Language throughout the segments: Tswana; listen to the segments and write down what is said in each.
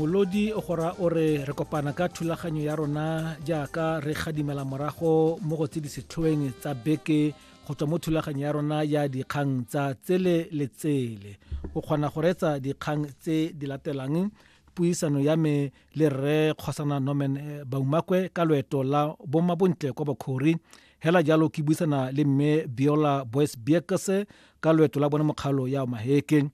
molodi o gora o re re kopana ka thulaganyo ya rona jaaka re gadimela morago mo go tse di setlhoeng tsa beke go tswa mo thulaganyo ya rona ya dikgang tsa tsele le tsele o kgona go retsa dikgang tse di latelang puisano ya me le rre kgosana norman eh, baumakwe ka loeto la bomabontle kwa bokhori hela jalo ke buisana le mme biola boys biekese ka loeto la bone mokgalo ya maheke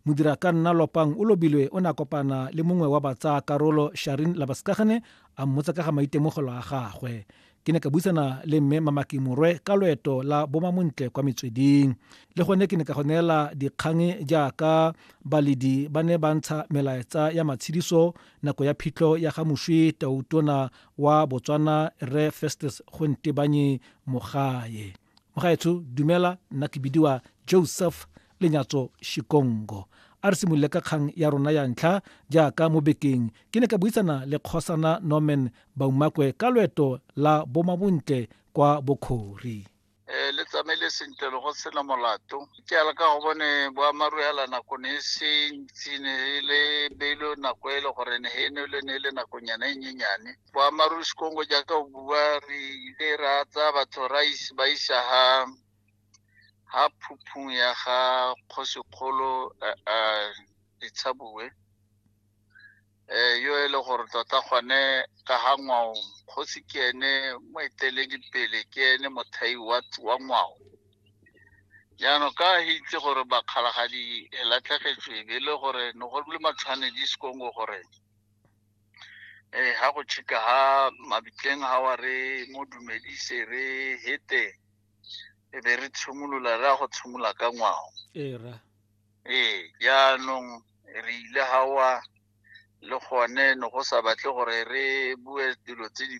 modirakanna lopang o lobilwe o ne a kopana le mongwe wa batsaya karolo sharin labaskagane a mmotsa ka ga maitemogelo a gagwe ke ne ka buisana le mme mamaki morwe ka loeto la bomamontle kwa metsweding le gone ke ne ka go neela dikgang jaaka baledi ba ne ba ntsha melaetsa ya matshediso nako ya phitlho ya ga moswi tautona wa botswana re festus gontebanye mogae mogaetsho dumela nna ke bidiwa joseph lenyatso shikongo a re simolole ka kgang ya rona ya ntlha jaaka mo bekeng ke ne ka buisana le kgosana norman baumakwe ka loeto la bomabontle kwa bokhori um le tsamaile sentle le go sena molato ke ala ka go bone boamaru ya la nako ne e se ntsi ne e le beilo nako e le gore ne e ne le ne e le nakonyana e nyenyane boammaaruri sekongo jaaka o bua re ile ra tsaya batho ra is- ba isa ha ha phuphung ya ga kgosikgolo eh, eh, letshabue eh yo e le gore tota gone ka ga ngwao kgosi ke ene moeteledipele ke ene mothai wa wa ngwao jaanong ka he itse gore bakgalagadi e latlhegetswe e be e le gore ne go le matshwanedi sekongo gore eh ha go chika ha mabitleng ha wa re mo dumedise re hete e be re tshimolola re ya go tshimola ka ngwao ee ra ee jaanong re ile gawa le gone ne go sa batle gore re bue dilo tse di